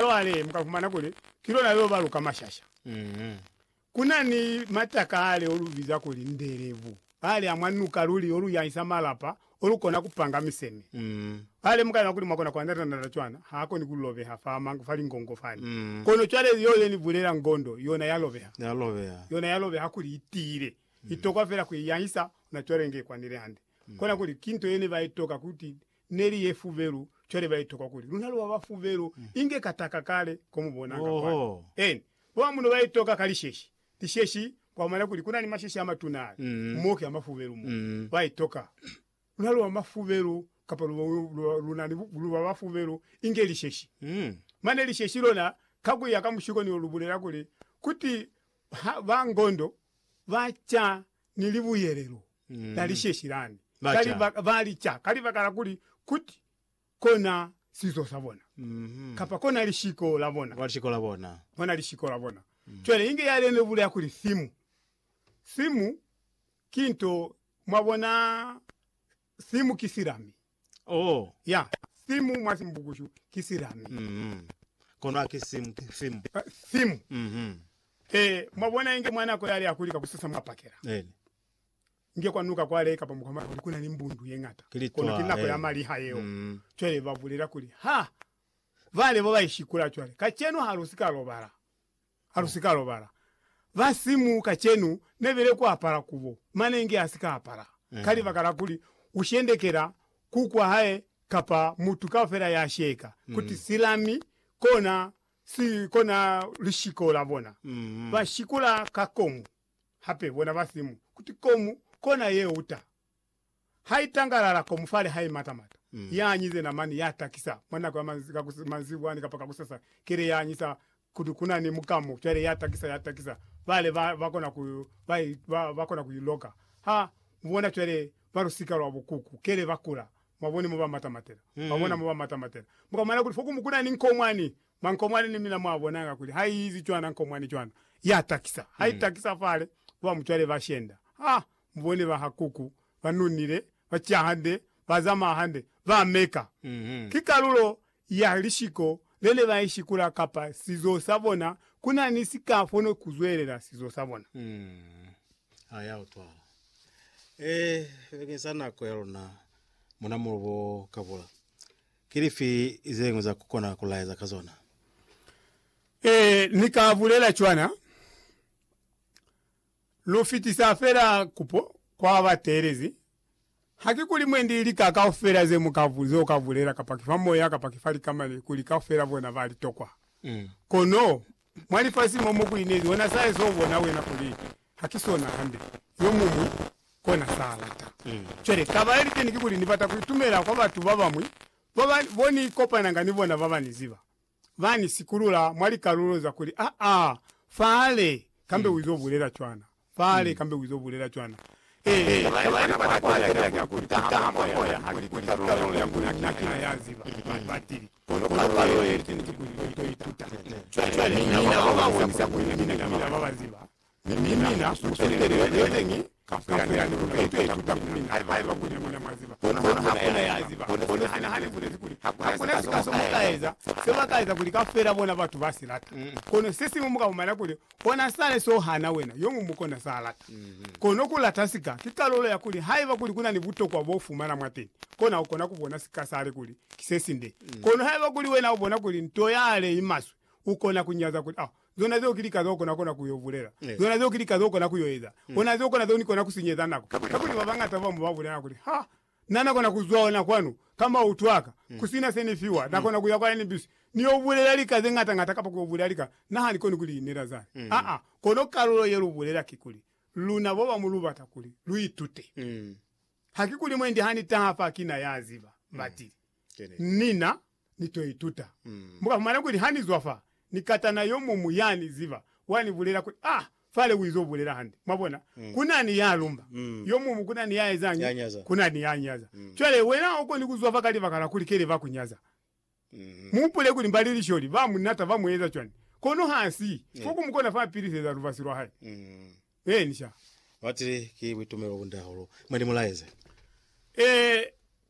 Cwale mu ka fumana kuli ki lona leo ba lu ka mashasha. Ku na ni mataka ale o lu biza kuli ndelevu, ale a mwa nuka luli o lu yahisa malapa, o lu kona ku panga miseme. Cwale mu ka lemuha kuli mwa kona ku andata-andata cwana, ha koni ku lobeha fa manga, fa lingongo fani. Kono cwale yeo ye ni bulela ngondo, yona ya lobeha. Ya lobeha. Yona ya lobeha kuli i tiile. I tokwa fela ku i yahisa, ona cwale inge i kwanile hande. Kona kuli ki nto ye ne ba itoka, ku ti, ne li ye fubelu, cwale ba itokwa kuli, Luna lu ba ba fubelu, inge ka taka kale ko mu bonanga kwani. Oho. Eni, bo ba muno ba itoka ka lisheshi, lisheshi, kwa mona kuli ku na ni masheshi a matuna ale, mo ki a mafubelu mo. Ba itoka, Luna lu ba mafubelu, kapa lu, lu, lu, lu na ni, lu ba ba fubelu, inge lisheshi. Mane lisheshi lona, ka ku ya ka mushiko ni lo lu bulela kuli, Kuti ha, ba ngondo, ba ca ni libuyelelo la lisheshi lani ka libaka, ba li ca ka libaka la kuli kuti kona sizo sa bona, kapa kona lishiko la bona, kona lishiko la bona. Cwale inge ya lena ibulela kuli simu, simu ki nto, mwabona, Simu ki silami. Oh. Ya, simu mwa Simbukushu ki silami. Mm. Kono ha ki simu, ki simu. Eh, simu. Mhm. Eh, mwabona, inge mwa nako yale ya kuli ka kusasa mwa pakela. Eena. Inge kwa nuka kwale kapa mukwa mwa kuli kuna ni mbundu ye ngata. Ki litwa, Kono ki nako ya eh. maliha yeo. Mm. Cwale ba bulela kuli, Ha! Vale bo ba ishikula cwale. Kacenu ha lu si ka lobala. Halusika lobala. Basimu kacenu nebile kuapala kubo, mane inge asika apala, ka libaka la kuli ushendekela kuku wahae kapa mutu kaufela yasheka kuti silami kona si kona lishiko labona. Bashikula ka komu. Hape bona basimu kuti komu kona yeuta. Hai tangalala ko mufale hai mata mata. Ya anyize namani ya takisa mwa nako ya manzibwa ni kapa kakusasa kele ya anyisa kutu kuna ni mukamo cwale ya takisa ya takisa bale ba ba kona ku ba ba kona ku iloka ha mubona cwale mwa lusika lwa bukuku kele ba kula mwaboni mo ba mata matela ba bona mo ba mata matela muka mona kuli fokumu kuna ni nkomwani mwa nkomwani ni mina mwa bonanga kuli ha izi cwana nkomwani cwana ya takisa ha itakisa fale ba mucwale ba shenda ha Mubone ba ha Kuku, ba nonile, ba ca hande, ba zamaa hande, ba meka. Ki kalulo ya lishiko lene ba ishikula kapa sizo sa bona, kuna ni si ka fono ku zwelela sizo sa bona. Ha ya utwala. Ee, bakeng sa nako ya luna mona mulubo o ka bula, ki lifi ze ñwi za ku kona ku laeza ka zona? Ee, ni ka bulela cwana. Lu fitisa fela kupo kwa ba teelezi. Haki kuli mwe ndi lika kaufela ze mu ka, ze u ka bulela, kapa ki fa moya, kapa ki fa likamani, kuli kaufela bona ba li tokwa. Kono, mwa lifasi mo, mo ku inezi, wena sa ezo ubona wena kuli ha ki sona hande. Yo muñwi kona sa lata. Cwale, taba ye liteni kikuli, Ni bata ku itumela kwa batu ba bamwi, ba ba, bo Ni kopananga ni bona, ba ba Ni ziba. ba ni sikulula mwa likalulo za kuli, Aa, Fale! Kambe u izo bulela cwana. Fale! Kambe u izo bulela cwana. Ee, na ba ne ba kwatela cwana kuli, Ku taha mwa Moya ha ki kuli kalulo ya kuli na ki na ya ziba. Batili. Kono kalulo ye ki niti kuli ni to ituta. Cwale, mi na ba ba bonisa kuli ni mina ki na ba ba ziba. Mi mina mu tolele yo ne ni ka fuyani ya luna ye twa ituta ku mina, haiba kuli mina mwa ziba. Kono ha ku na yena ya ziba. Kono sina hane ha ni bulezi kuli ha ku na sika so mu ka eza, se ba ka eza kuli kaufela bona batu ba si lata. Kono se siñwi mu ka fumana kuli ona sale so hana wena, yo muñwi kona sa lata. Kono ku lata sika ki kalulo ya kuli haiba kuli ku na ni butokwa bo fumana mwateni, kona u kona ku bona sika sale kuli ki se sinde. Kono haiba kuli wena u bona kuli nto yale i maswe, u kona ku nyaza kuli, Oh, Zona zeo ki lika zeo kona kona ku yo bulela. Zona zeo ki lika zeo kona ku yo eza. Ona zeo kona zeo ni kona ku sinyeza nako. Kakuli ba bañata ba mo ba bulela kuli, Ha na na kona ku zwa ona kwanu, kamba u twa ka, ku sina se ni fiwa, na kona ku ya kwa NBC, ni yo bulela lika ze ñata ñata kapa ku yo bulela lika, na ha ni koni ku li inela zani. Aa, kono kalulo ye lu bulela kikuli, Luna bo bamu lu bata kuli lu itute. Hakikuli mwendi ha ni taha fa ki na ya ziba, batili. Ni na ni to ituta. Mu ka fumana kuli ha ni zwa fa, ni katana yo muñwi ya ni ziba, wa ni bulela kuli, Ah, Fale u izo bulela hande. Mwa bona? Ku na ni ya lumba. Yo muñwi ku na ni ya ezañi? Ku na ni ya nyaza. Cwale, wena ha u koni ku zwa fa ka libaka la kuli kele ba ku nyaza. Mu hupule kuli mba li lisholi, ba mu nata, ba mu eza cwani. Kono ha si fo ku mu kona fa piliseza lubasi lwa hae. Eeni, sha. Batili ki buitumelo bu nda hahulu. Mwa ni mulaeze. Ee.